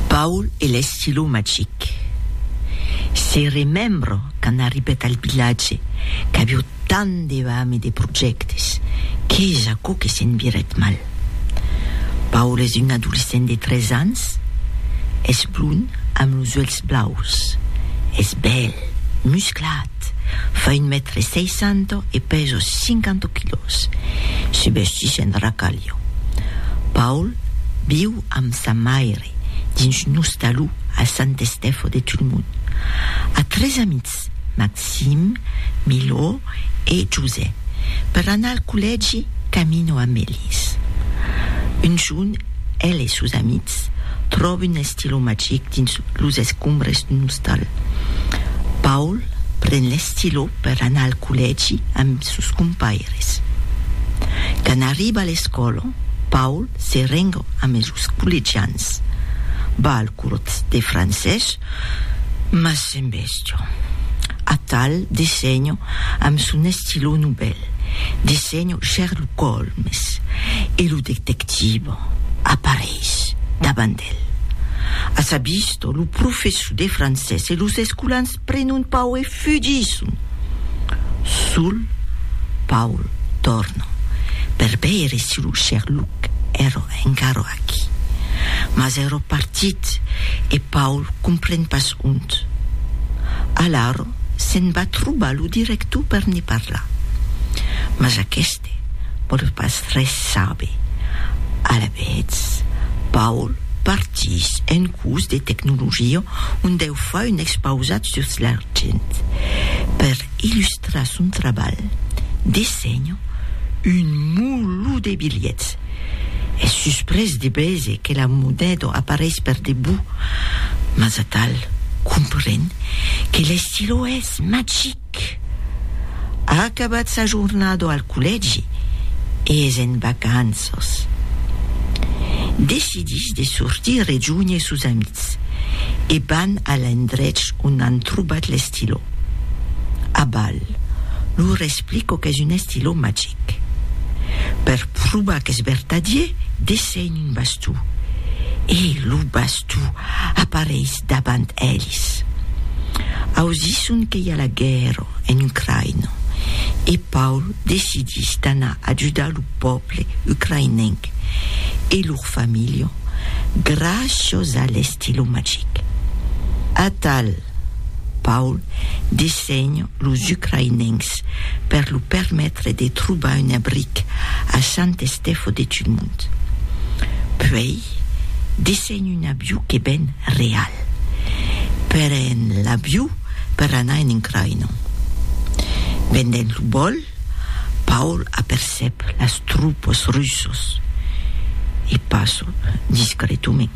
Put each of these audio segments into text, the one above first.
Paul e l'estilo magic. Se remembro quand arribèt al vilatge qu'avió tant de vam e de projèctes, qu'es aquò que se'n virèt mal. Paul es un adolescent de 13 ans, es blond amb los uèlhs blaus, es bèl, musclat, Eth fa un mètre sei cents e pèso cinquanta quilòs. Se vestís en racalho. Paul viu amb sa maire dins un ostaló a Sant Estèfo de Tulmont. A tres amics, Maxim, Milo e Josè. Per anar al collègi camino a Melis. Un jorn, el e sos amics tròben De lo magic dins los escombres d'un ostal. Paul pren l'estilò per anar al collègi amb sos compaires. Quand arriba a l'escòla, Paul se renga amb los collegians. Va al curs de francés, mas s'embèstia. Atal dessenha amb son estilò novèl, dessenha Sherlock Holmes e lo detective apareis davant Bèl. A sa vista, lo professor de francés e los escolans prenon pau e fugisson. Sul, Paul torna per veire si lo Sherlock èra encara aquí. Mas èra partit e Paul compren pas ont. Alara se'n va trobar lo director per ne parlar. Mas aqueste. Te vòl pas res saber. Alavetz, Paul partís en curs de tecnologia ont eu fai un expausat sus l'argent. Per illustrar son trabalh, dessenha un mulho de bilhets. Es susprés de veser que la moneda apareis per debut, mas atal compren que l'estilò es magic. Marc a acabat sa jornada al collègi e es en vacanças. Decidís de sortir rejunher sos amics e van a l'endrech ont an trobat l'estilò. Abal lor explica qu'es un estilò magic. Per provar qu'es vertadier, dessenhe un bastó e lo bastó apareis Dabant elis, ausisson que i a la guèrra en Ucraina e Paul decidís d'anar ajudar lo pòble ucraïnenc e lor familha gràcias a l'estilo magic. Atal, Paul desenha los ucraïnencs per lo permetre de trobar un abric a Sant Estèfo de Tulmont. Puèi, desenha. En un aviu que ben real. Per en l'aviu per anar en Ucraina. Pendent lo vòl, Paul apercep las tropas russas e passa discretament.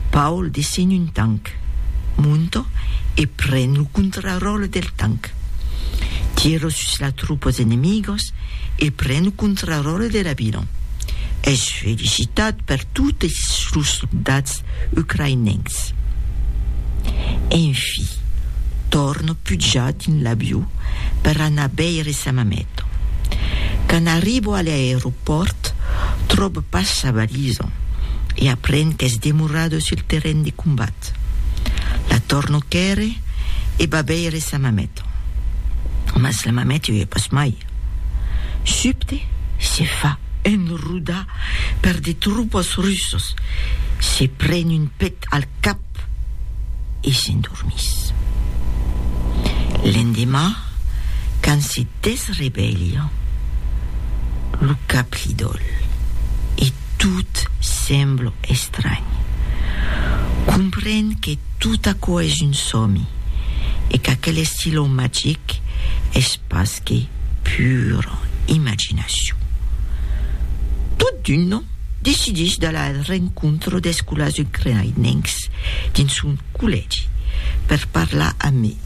Paul descen un tanc, monta e pren lo contraròtle del tanc. Tira sus las tropas enemigas e pren lo contraròtle de l'avion. Es felicitat per totes los soldats ucraïnencs. Enfi, tòrno pujar dins l'avió per anar veire sa mameta. Quand arribo a l'aeropòrt, tròbo pas sa valisa e aprenc qu'es demorada sul terren de combat. La tòrno quèrre e va veire sa mameta. Mas la mameta i es pas mai. Subte, se fa enrodar. per de tropas russos, se pren un pet al cap e s'endormís. L'endemà, quand se desrevelha, lo cap li dòl e tot sembla estranh. Compren que tot aquò es un sòmi e qu'aquel estilon magic es pas que pura imaginacion. Tot d'un nom, decidís d'alar al rencontre d'escolars ucraïnencs dins son collègi per parlar amb eles.